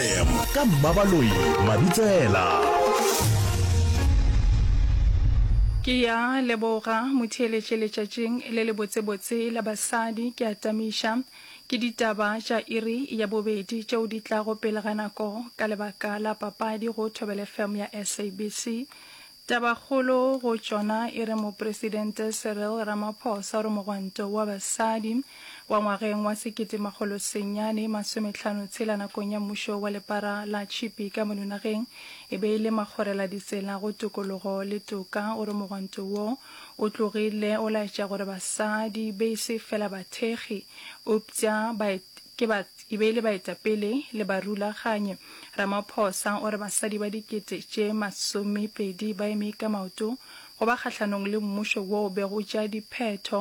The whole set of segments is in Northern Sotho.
FM ka Mmabaloi Mabitsela. Ke ya leboga motheeletše letšatšing le le botsebotse la basadi. Ke a tamiša ke ditaba tša iri ya bobedi tšeo di tlago pele ga nako ka lebaka la papadi go Thobela FM ya SABC. Tabakgolo go tšona e re Mopresidente Cyril Ramaphosa o re mogwanto wa basadi wa ngwageng wa sekete makgolo senyane masometlhano tshela nakong ya mmušo wa lepara la tšhipi ka mono nageng e be e le makgorela ditsela go tokologo le toka. O re mogwanto wo o tlogile o laetša gore basadi be e se fela bathekgi eupša ke e be e le baetapele le barulaganyi Ramaphosa o re basadi ba dikete tše masomepedi ba eme ka maoto go ba kgahlanong le mmušo wo o bego o tšea diphetho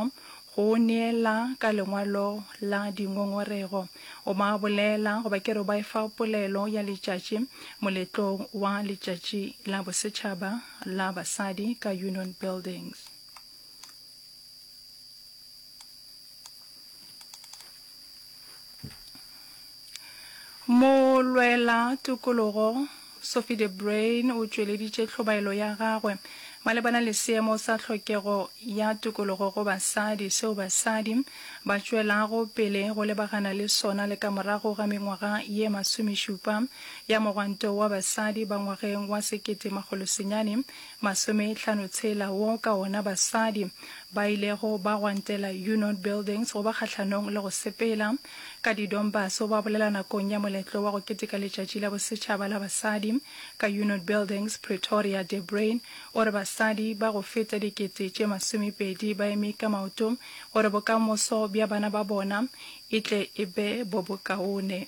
go o neela ka lengwalo la dingongorego. O ba bolela goba ke re o ba efa polelo ya letšatši moletlong wa letšatši la bosetšhaba la basadi ka Union Buildings. Molwela tokologo Sophie de Bruyn o tšweleditše tlhobaelo ya gagwe malebana le seemo sa tlhokego ya tokologo go basadi seo basadi ba tšwelago pele go lebagana le sona le ka morago ga mengwaga ye masomešupa ya mogwanto wa basadi ba ngwageng wa sekete makgolo senyane Masomehlano tshela wo ka wona basadi ba ilego ba gwantela Unot Buildings go ba kgahlanong le go sepela ka didombaso ba bolela nakong ya moletlo wa go keteka letšatši la bosetšhaba la basadi ka Unot Buildings Pretoria De Bruin o re basadi ba go feta dikete tše masomepedi ba eme ka maoto gore bokamoso bja bana ba bona e tle e be bo bokaone.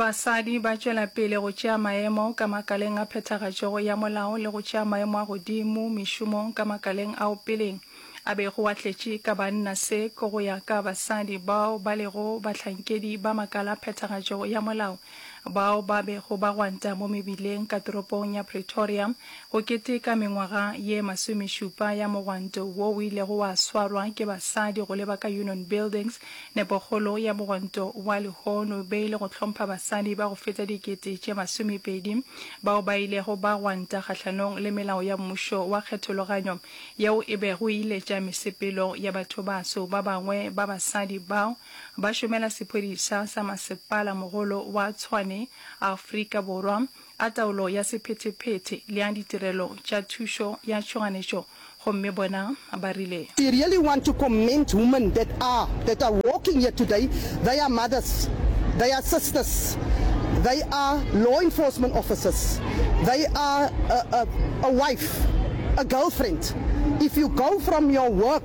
Basadi ba tšwela pele go tšea maemo ka makaleng a phethagatšo ya molao le go tšea maemo a godimo mešomong ka makaleng ao pele a bego a tletše ka banna. Se ke go ya ka basadi bao ba lego bahlankedi ba makala a phethagatšo ya molao bao ba bego ba gwanta mo mebileng ka toropong ya Pretoria Go keteka mengwaga ye masomešupa ya mogwanto wo o ilego wa swarwa ke basadi go leba ka Union Buildings, nepokgolo ya mogwanto wa lehono be e le go hlompha basadi ba go feta dikete tše masomepedi bao ba ilego ba gwanta kgahlanong le melao ya mmušo wa kgethologanyo yeo e bego e iletša mesepelo ya bathobaso ba bangwe ba basadi bao ba šomela sephodisa sa masepala mogolo wa Tshwane Afrika Borwa a taolo ya sephethephethe le a ditirelo tša thušo ya tšhoganetšo gomme bona ba rile. I really want to commend women that are that are walking here today, they are mothers, they are sisters, they are law enforcement officers, they are a a a wife, a girlfriend, if you go from your work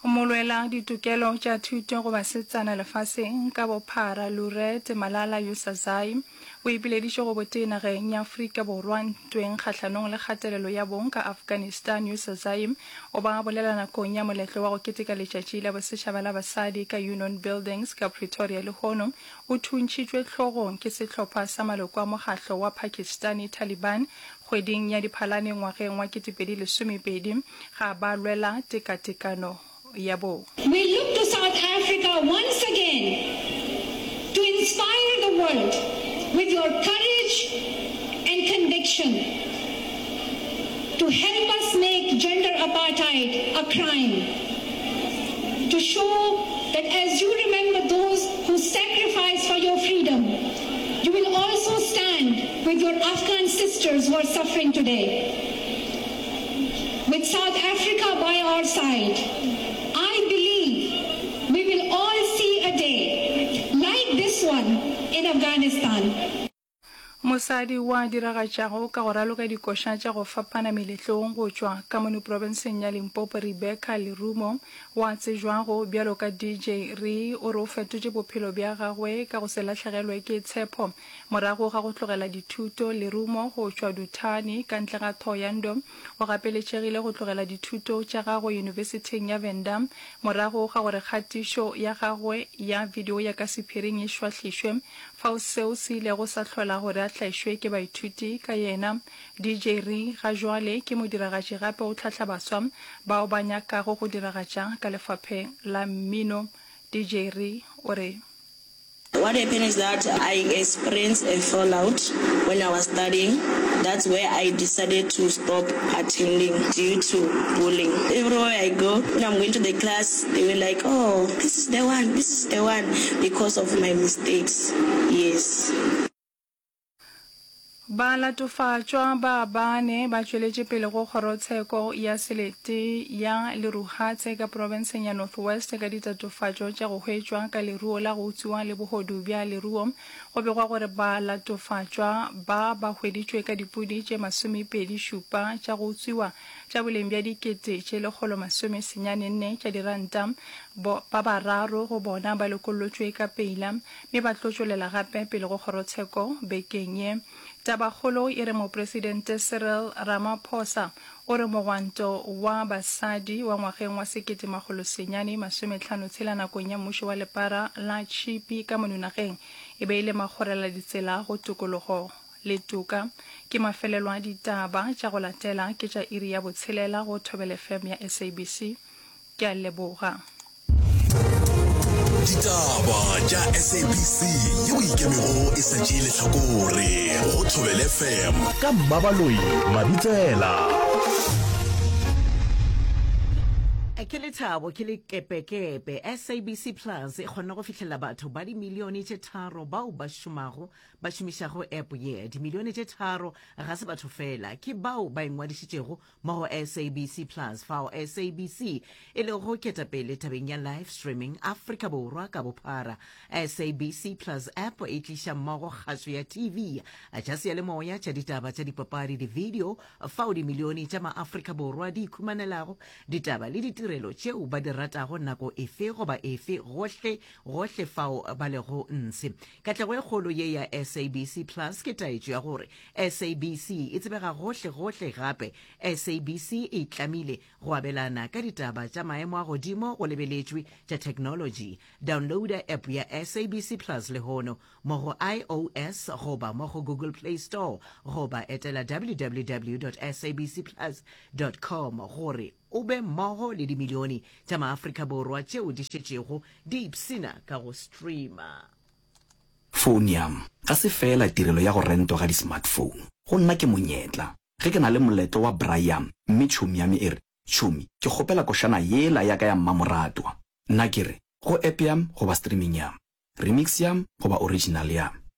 Go molwela ditokelo tša thuto go basetsana lefaseng ka bophara Lurette Malala Yousazai o ipileditše go botee nageng ya Afrika Borwa ntweng kgahlanong le kgatelelo ya bong ka Afghanistan Yousazai o ba bolela nakong ya moletlo wa go keteka letšatši la bosetšhaba la basadi ka Union Buildings ka Pretoria lehono o thuntšhitšwe hlogong ke sehlopha sa maloko a mokgahlo wa Pakistani Taliban Kgweding ya Diphalane ngwageng wa 2020, ga ba lwela tekatekano ya bong. We look to South Africa once again to inspire the world with your courage and conviction to help us make gender apartheid a crime, to show that as you remember those who sacrificed for your freedom, You will also stand with your Afghan sisters who are suffering today. With South Africa by our side, I believe we will all see a day like this one in Afghanistan. Mosadi o a diragatšago ka go raloka dikoša tša go fapana meletlong go tšwa Kamunu Profenseng ya Limpopo Rebecca Lerumo Wa tsejwago bjalo ka DJ Re o re o fetotše bophelo bja gagwe ka go se lahlegelwe ke tshepho. Morago ga go tlogela dithuto, lerumo, go tšwa Duthani, ka ntle ga Thohoyandou, o gapeletšegile go tlogela dithuto tša gagwe Yunibesithing ya Venda morago ga gore kgatišo ya gagwe ya video ya ka sephiring e šwahlišwe, fao seo se ilego sa hlola gore a tlaišwe ke baithuti ka yena. DJ Ri, Ga joale ke modiragatši gape o tlhahla baswa bao ba nyakago go diragatša ka lefapheng la mmino. DJ Ri o re. What happened is that I experienced a fallout when I was studying, that's where I decided to stop attending due to bullying. Everywhere I go, when I'm going to the class, they were like, oh, this is the one, this is the one, because of my mistakes. Yes. Balatofatšwa ba bane ba tšweletše pele go Kgorotsheko ya Selete ya Leruhatse ka profenseng ya North West ka ditatofatšo tša go hwetšwa ka leruo la go utswiwa le bohodu bja leruo. Go begwa gore balatofatšwa ba ba hweditšwe ka dipudi tše masomepedi šupa tša go utswiwa tša boleng bja dikete tše lekgolo masome senyane nne tša diranta. Bo, ba bararo go bona ba lokollotšwe ka peila mme ba tlo tšwelela gape pele go kgorotsheko bekeng ye. Tabakgolo e re Mopresidente Cyril Ramaphosa o re mogwanto wa basadi wa ngwageng wa sekete makgolo senyane masome tlhano tshela nakong ya mmušo wa lepara la tšhipi ka monunageng e be e le makgorela ditsela go tokologo le toka. Ke mafelelo a ditaba, tša go latela ke tša iri ya botshelela go Thobel FM ya SABC. Ke a leboga. Ditaba tša SABC yeo ikemego e sa tšee lehlakore go Thobel FM. Ka Mmabaloi Mabitsela. ke lethabo ke lekepekepe sabc plus e kgonne go fihlelela batho ba dimilione tše tharo bao ba šomago ba šomišago app ye dimilione tše tharo ga se batho fela ke bao ba ingwadišitšego mo go SABC Plus fao SABC e lego ketapele tabeng ya live streaming Afrika Borwa ka bophara. SABC Plus app e tliša mmogo kgaso ya TV, tša seyalemoya, tša ditaba, tša dipapadi, divideo fao dimilione tša maAfrika Borwa di ikhumanelago ditaba le ditirelo tšeo ba di ratago nako efe goba efe gohle gohle fao ba lego ntshe Katlego e kgolo ye ya SABC Plus ke taetšo ya gore SABC e tsebega gohle-gohle gape SABC e itlamile go abelana ka ditaba tša maemo a godimo go lebeletšwe tša theknolotši. Downloada App ya SABC Plus lehono mo go iOS goba mo go Google Play Store goba etela www dot sabcplus dot com gore o be mmogo le dimilione tša maAfrika Borwa tšeo di šetšego di ipshina ka go streama. Founo ya m ga se feela tirelo ya go rentwa ga di-smartphone. Go nna ke monyetla. Ge ke na le moletlo wa braai ya m mme tšhomi ya me e re, Tšhomi, ke kgopela košana yela ya ka ya mmamoratwa, nna ke re, go app ya m goba streaming ya m, remix ya m goba original ya m,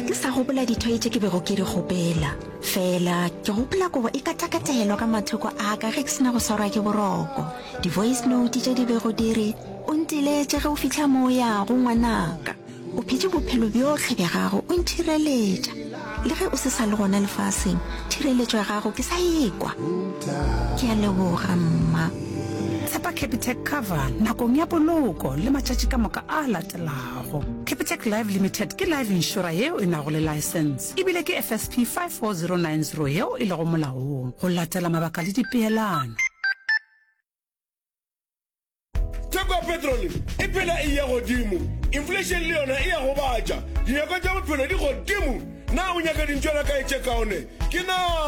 ga ke sa gopola dithoi tše ke bego ke di gopela fela ke gopola kobo e katakatelwa ka mathoko a ka ge ke sena go swarwa ke boroko di-voice note tše di bego di re o ntiletše ge o fitlha mo o yago ngwanaka o phetše bophelo bjotlhe bja gago o nthireletša Le ge o se sa le gona lefaseng, thireletšo ya gago ke sa ekwa. Ke a leboga, Mma. Tshepa Capitec Cover nakong ya poloko le matšatši ka moka a latelago. Capitec Life Limited ke life inšora yeo e nago le laesense e bile ke FSP 54090 yeo e lego molaong go latela mabaka le dipeelano. theko ya petrole e phela e ya godimo inflation le yona e ya go batša dinyako tša bophelo di godimo na o nyaka dintšwana kae tše kaone ke na